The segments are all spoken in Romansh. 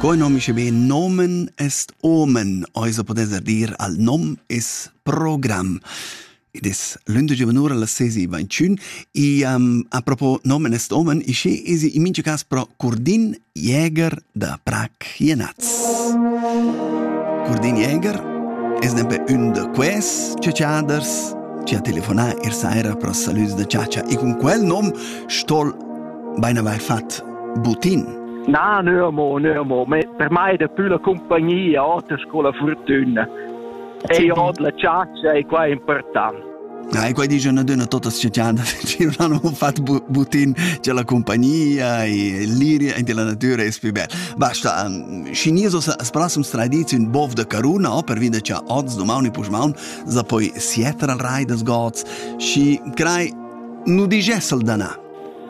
Quai nom isce be nomen est omen, oisa podessa dir al nom es program. Id es lünde giovanura las sesi ventschün e um, a propo nomen est omen isce esi in mincha cas pro Curdin Jäger da Prag Jenaz. Curdin Jäger es nempe ün da ques ciaciaders ci ha telefonà ir saira pro salüs da ciacia e cun quel nom stol bein avair fat Butin. Na, no, mo, no, mo. Per mai è da più la compagnia, otters con la fortuna. E io la ciaccia è qua importante. Ah, e quai dice una donna tutta sciocciata, perché non hanno fatto butin c'è la compagnia e l'iria e la natura è più bella. Basta, cinisos sparasum tradizion bov de caruna, o per vide c'è oz domani pusmaun, za poi sietra al rai des gods, și crai nu digessel dana.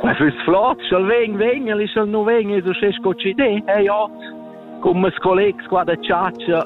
E füss flot, sch'el vegn, vegn, el sch'el nu vegn, es uschè sco chi d'e. Eh ja, cum mes collegs qua da chatscha,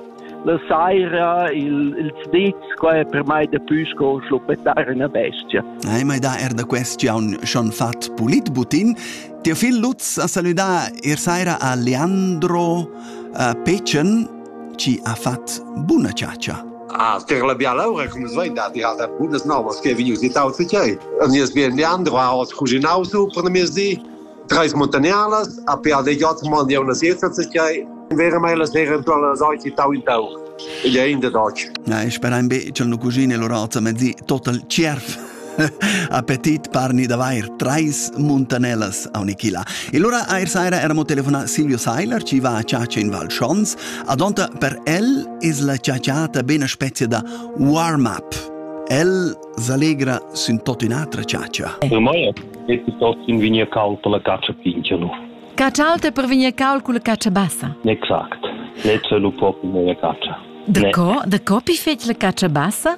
la saira, il, il zditz, qua è per mai da pü sco schluppettar üna bestia. Hai mai da er da quest giaun schon fat pulit butin? Teo fil Lutz ha salüdà ir saira a Leandro uh, Pecen, chi ha fat buna chatscha. Ah, ter la biala ura, cum es vain dat, ja, da bunas novas che vegnius dit auter tgei. An nies bien Leandro ha oz cuginau su per na di, treis montagnarlas, a pe a de got man di una siesta tgei, vera mai la sera eventual la sauci tau in tau. Ed è in de doc. Na, ich bin ein be, ch'el nu cucine lor alter, ma zi, total tschierf. Appetit parni d'avair trais muntanellas aunichila. E lura eir saira eramo telefonà Silvio Seiler, chi va a chatscha in Val Schons. Adonta per el es la chatschatta be üna spezia da warm-up. El s'allegra sün tot ün'atra chatscha. Per mai es tot in vigna cauta la catscha pinchanu. Catscha alta per vegnir caul culla catscha bassa. Exact. Lezza lu propi meia catscha. Da co, da co pi fetg la catscha bassa?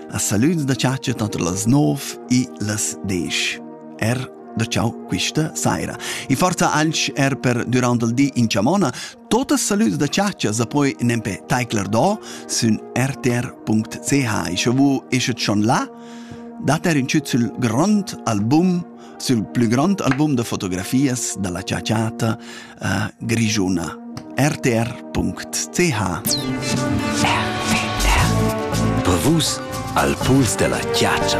a saloons da chatscha tanter las 9 e las 10. Er da ciao quista saira. E forza anche er per durant il di in chamona, totes saloons da chatscha sa poi nempe taicler do sün rtr.ch e sche vu eschet schon là, dat er in ciut sul grond album, sul plü grond album da fotografias da la chaciata a grischuna rtr.ch Per vus al puls della chiaccia.